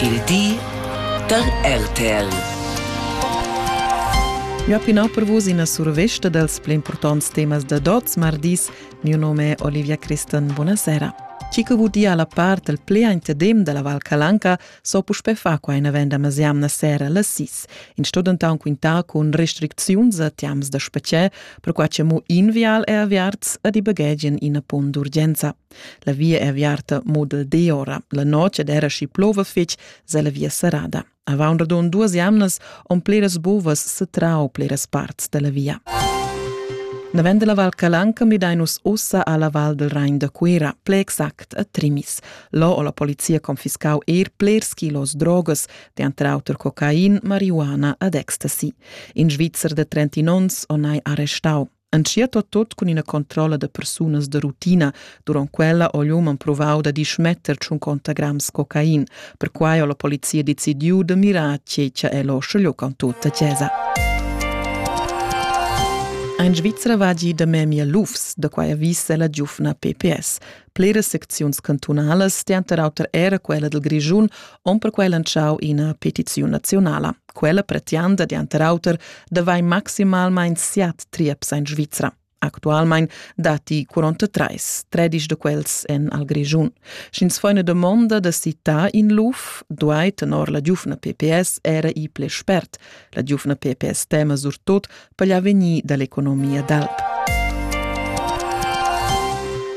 Il di da RTL. Jo pinau per vus ina survesta dals pli importants temas da Dots mardis. Mio nome è Olivia Christen. Buonasera. Chi che vot dir alla part del plea interdem della Val Calanca so puspè fa qua in avenda masiamna sera la sis. In sto dentan quintar con restricziuns a tiams da specie, per qua che mo invial e aviarts ad i baghegian ina pon d'urgenza. La via è aviarta mo dal di ora. La notg ed era schi plova fitg, se la via serrada. Avant radun duas jamnas on pleras bovas setrau pleras parts della via. Na vend la Val Calanca midainus ussa alla Val del Rain da Cuira, ple exact a Trimis. Lo o la polizia confiscau er plers kilos drogas, de antra auter cocain, marihuana ad ecstasy. In Svizzer de 30 ons o nai arrestau. Entschiet tot cun ina controlla da persunas da rutina. Durant quella ho l'uman provau da dismetter tschun conta grams cocain. Perquai ho la polizia decidiu da mirar tgei che el ho scegliu con tutta chiesa. Ein Svizra vagi da memia lufs, da quai avvisa la giufna PPS. Bleras secziuns cantunalas, denter auter era quella dil Grischun, on perquei lantschau ina petiziun nazionala. Quella pretianda, denter auter, da vai maximalmein siat trieps in Svizra. Actualmein dati 43, tredisch de quels en al Grischun. Sch'ins fa una domanda da citar in luf, duai tenor la giufna PPS era i ple spert. La giufna PPS tema surtot per l'avegnir dall'economia d'alp.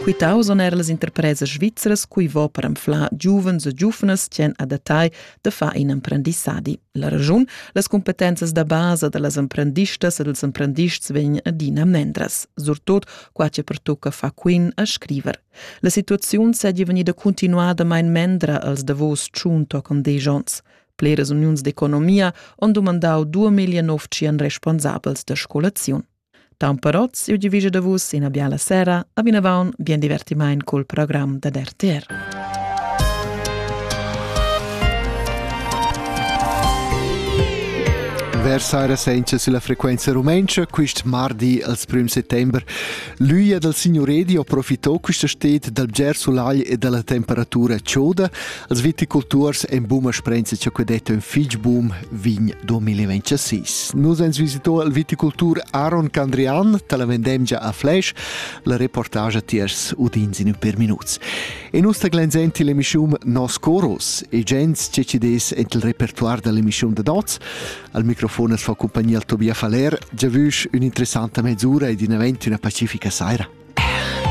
Quitau son er las interpresas svizras cui vo per anflar giuvens e giuvnas tien adattai da far in emprendissadi. La ragiun, las competenzas da basa da las emprendistas e dels emprendists vegn adina mendras, surtot qua che pertocca fa quin a scriver. La situaziun seigi vegnida continuada mein mendra als davos tschun toccon dei jons. Bleras uniuns d'economia han dumandau 2009 responsabels da scolaziun. Tamperots, siu divisa da vus ina biala sera, a vinavon bien divertimaint col program da RTR. Versare senza sulla frequenza rumenca quist mardi als prim settember. L'üia dal signoredio approfittò quista sted dal bger sulagl e dalla temperatura chioda Als viticulturs en buma sprenza cha que detto ün fich bum vin 2026. Nus ens visitò al viticultur Aaron Candrian, tala vendemgia a Flash, la reportage tiers udins in ün per minuts. E nus taglenzenti l'emischium Nos Coros, e gens che ci des ent il repertoire dell'emischium de Dots. Al microfon es fa compagnia il Tobias Faller, già vüsch ün'interessanta mezz'ura ed in event üna pacifica saira.